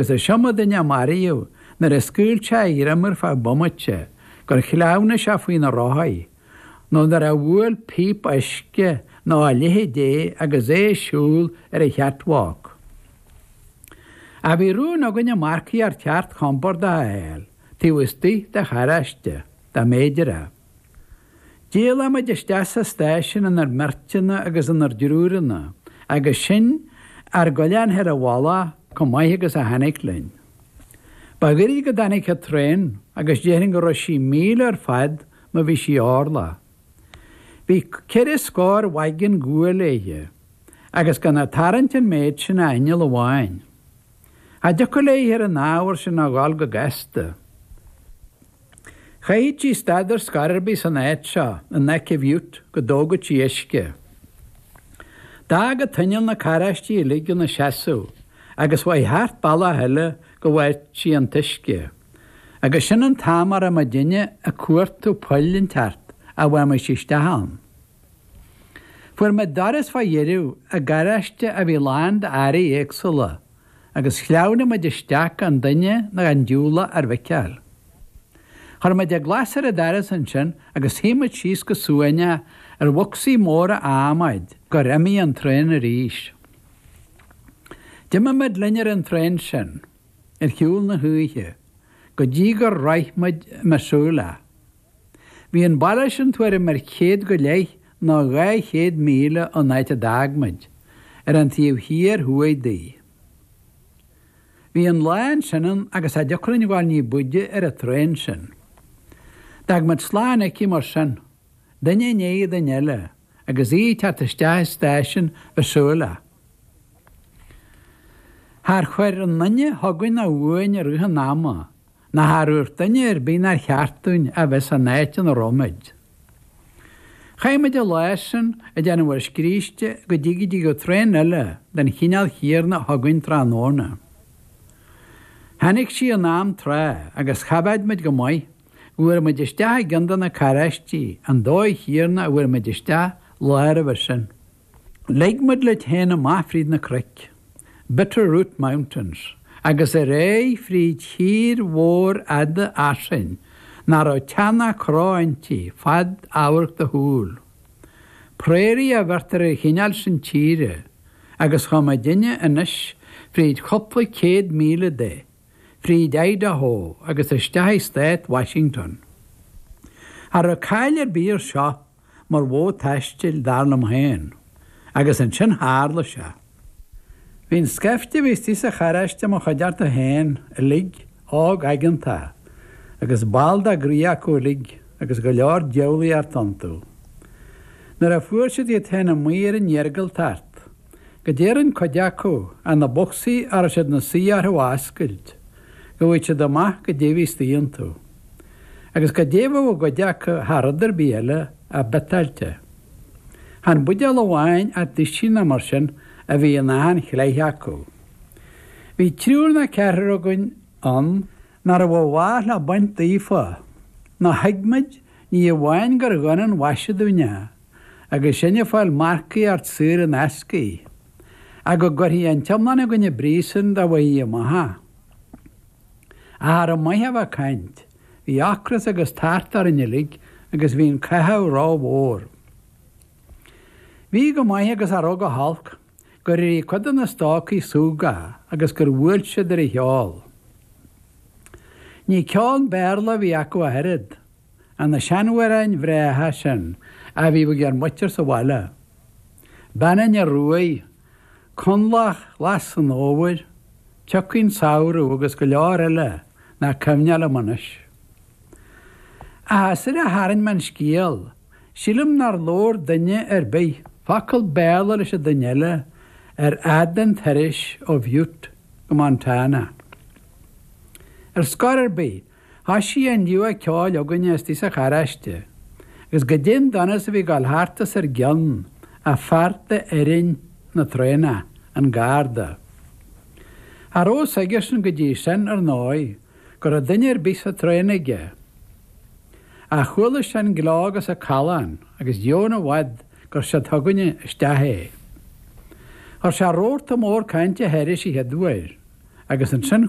Is iomaí duine a maraíodh nuair a scaoil sé a ghreim ar feadh bomaite, gur shleamhnaigh sé faoi na rothaí, nó nuair a bhuail píp uisce nó a leithéid é agus é ag siúl ar an chatwalk. Ach bhí rún againne marcaíocht cheart chompordach a fháil, taobh istigh de charráiste, dá mb'fhéidir é. D'éalaigh muid isteach sa stáisiún inár mbeirteanna agus inár dtriúranna agus sinn ár gcoinneáil féin i bhfolach chomh maith agus a tháinig linn. Ba ghairid go dtáinig an traen agus déarfainn go raibh sí míle ar fad má bhí sí orlach. Bhí ceithre scór waggon guail léithe agus gan ag tarraingt an méid sin ach inneall amháin. Cha dtiocfadh léithe ar an ábhar sin a dhul go gasta. Chaithfeadh sí stad ar scor ar bith san áit seo in aice Bhutte go dtógadh sí uisce. D'fhág an t-inneall na carráistí uilig ina seasamh agus chuaigh thart bealach eile go bhfaigheadh sí an t-uisce agus sin an t-am a raibh muidinne ag cuartú poill inteacht a bhfaighimis isteach ann. Fuair muid doras fá dheireadh i gcarráiste a bhí lán d'earraí éagsúla agus shleamhnaigh muid isteach gan duine ná gan diúlach ár bhfeiceáil. Chuir muid an glas ar an doras ansin agus shuigh muid síos go suaimhneach ar bhocsaí móra adhmaid gur imigh an traein arís. D'imigh muid linn ar an traein sin, ar shiúl na hoíche, go dtí gur shroich muid Missoula. Bhí an baile sin tuairim ar chéad go leith nó dhá chéad míle ón áit a d'fhág muid, ar an taobh thiar thuaidh di. Bhí an lá ansin ann agus cha dtiocfadh linn dhul ní b'fhaide ar an traein sin. D'fhág muid slán aici mar sin, duine i ndiaidh duine eile, agus í ag teacht isteach i stáisiún Mhissoula. Char chuir aon duine chugainn ná uainn i rith an ama Ná char úirt duine ar bith nár cheart dúinn a bheith san áit ina raibh muid. Chaith muid an lá sin ag déanamh ár scríste go dtí go dtiocfadh traein eile den chineál chéanna chugainn tráthnóna. Tháinig sí in am trátha agus choimhéad muid go maith go bhfuair muid isteach i gcionn de na carráistí an dóigh chéanna a bhfuair muid isteach an lá roimhe sin. Leig muid léithe féin amach fríd na cnoic, Bitter Root Mountains, agus ar aghaidh fríd thír mhóir fhada fhairsing nach raibh teach ná cró inti, fad amhairc do shúl. Prairie a bheirtear ar an chineál sin tíre, agus chuaigh muidinne anois fríd cupla céad míle de, fríd Idaho agus isteach i stát Washington. Cha raibh caill ar bith air seo mar mhodh taistil, dar liom féin, agus ansin tharla sé. Bhí an scaifte a bhí istigh sa charráiste i mo chuideachta féin uilig, óg aigeanta, agus ball dá gcroí acu uilig, agus go leor diabhlaíocht iontu. Nuair a fuair siad iad féin amuigh ar an iargúltacht, goidé a rinn cuid acu ach na bocsaí a raibh siad ina suí orthu a oscailt, go bhfaigheadh siad amach goidé a bhí istigh iontu, agus goidé a bheadh i gcuid acu thar rud ar bith eile ach biotáilte. Chan buidéal amháin ach duisín ná mar sin a bhí in achan chleith acu. Bhí triúr ná ceathrar againn ann, nár mhaith leo baint daofa, ná thuig muid, ní amháin gur dhona an mhaise dúinn é. agus sinn ag fáil marcaíocht saor in ascaí, ach go gcuirfí an t-iomlán againn i bpríosún dá bhfaighfí amach é. Ach cha raibh maith a bheith ag caint, bhí ocras agus tart orainn uilig agus bhí an cathú rómhór. Bhí go maith agus cha raibh go holc, gur éirigh cuid de na stócaigh súgach agus gur bhuail siad ar an cheol. Ní ceol Béarla a bhí acu ach oiread. ach na seanamhráin bhreátha sin a bhíodh ag ár muintir sa bhaile, Bean an Fhir Ruaidh, Connlach Ghlas an Fhómhair, Tiocfaidh an Samhradh agus go leor eile nach cuimhneach liom anois. Ach is air a tharraing mé an scéal, sílim nár labhair duine ar bith focal Béarla leis an duine eile ar fhad an turais ó Bhutte go Montana. Ar scor ar bith, Tá sí indiu ag ceoil againne istigh sa charráiste, agus goidé an donas a bhí ag dul thart os ár gcionn ach fear de fhoireann na traenach, an garda. Cha raibh 's aigesean go dtí sin, ar ndóigh, go raibh duine ar bith sa traen aige. Ach chuala sé an gleo agus a' callán agus dheamhan i bhfad gur siúd chugainne isteach é. Chuir sé rabharta mór cainte thairis a chéaduair agus ansin